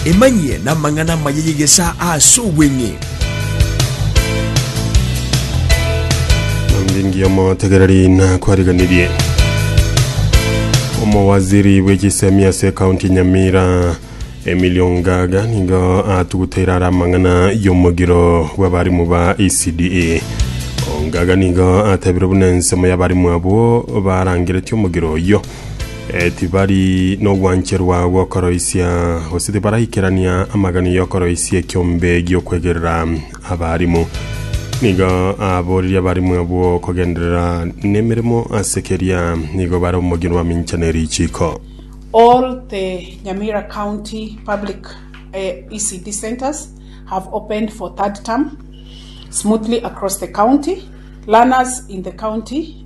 Emanyie namang'ana amaya y'egesaa ase obweng'e. Onde ngiya omotegereri nakwariganirie omowaziri bw'echisemi ase ekaunti ya nyamira emilio ngaga nigo atuguteire are amang'ana y'omogiro bw'abarimu ba ecda ongaga nigo atebire buna ensemo y'abarimu abwo barangeretie omogiro oyio Tibari nobwancherwa bw'okoroisia, gose tibaraikerania amagani y'okoroisia ekiombe gi'okwegerera abarimu. Nigo aboririe abarimu abwo kogenderera nemeremo ase keria nigo bare omogino bamincha ne richiko. All the Nyamira County Public ECD Centres have opened for third term smoothly across the county. Learners in the county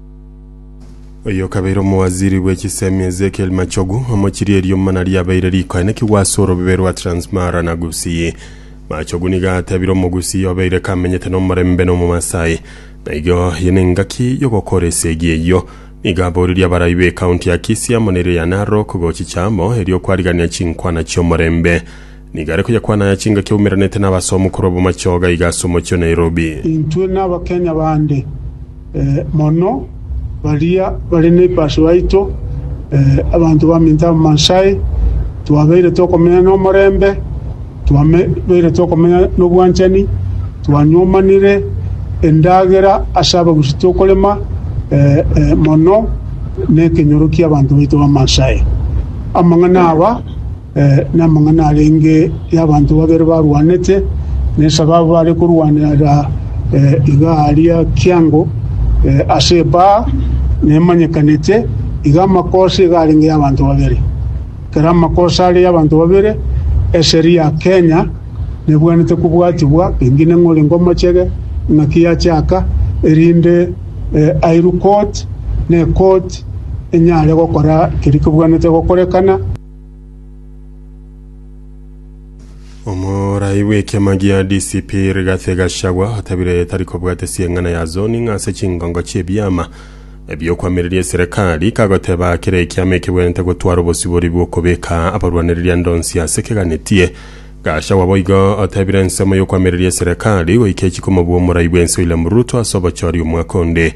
Oyo okabeire omowaziri bwe chisemi Ezekiel Machogu amochirie eriomana riabeire rikoenekigwa ase orobebe rwa Transmara na Gusii. Machogu nigo atebire Omogusii obeire kamenyete nomorembe na Omomasai. Na igo eye nengaki yogokora esegi eyio. Nigo aboririe abarai be county ya Kisii amo nere ya Narok gochicha amo erio kwariganera chinkwana chiomorembe. Nigo are koyakwana aya chingaki aumeranete n'abasomu korwa Bomachoga iga ase omochie o Nairobi. Intwe n'Abakenya bande mono baria bare neipashi baito, abanto baminto Abamaasai, twabeire tokomenya nomorembe, twabeire tokomenya nobwanchani, twanyomanire endagera ase abagusi tokorema mono nekenyoro kiabanto baito Bamaasai. Amang'ana aba. Namang'ana arenge y'abanto babere barwanete, na esababu bare korwanera iga aria kiango ase ebaa nemanyekanete, iga amakosa iga arenge y'abanto babere. Ekero amakosa are y'abanto babere, eseri ya Kenya nebwenerete kobwatibwa, pengine ng'a orenge omochege, ng'aki yachaka, erinde airwe court, na ecourt enyare gokora keria kebwenerete gokorekana. Omorai bw'ekiama gia DCP Rigathi Gachagua otabire tari kobwata esieng'ana ya zoning ase chingongo chi'ebiama ebiokwamireria eserekari kagoteba kera ekiama ekebwenerete gotwara obosibori bw'okobeka abarwanireria ande onsi ase keganetie Gachagua boigo otebire ensemo y'okwamireria eserekari goika echikumobua omorai bw'ense William Ruto ase obochori omwaka onde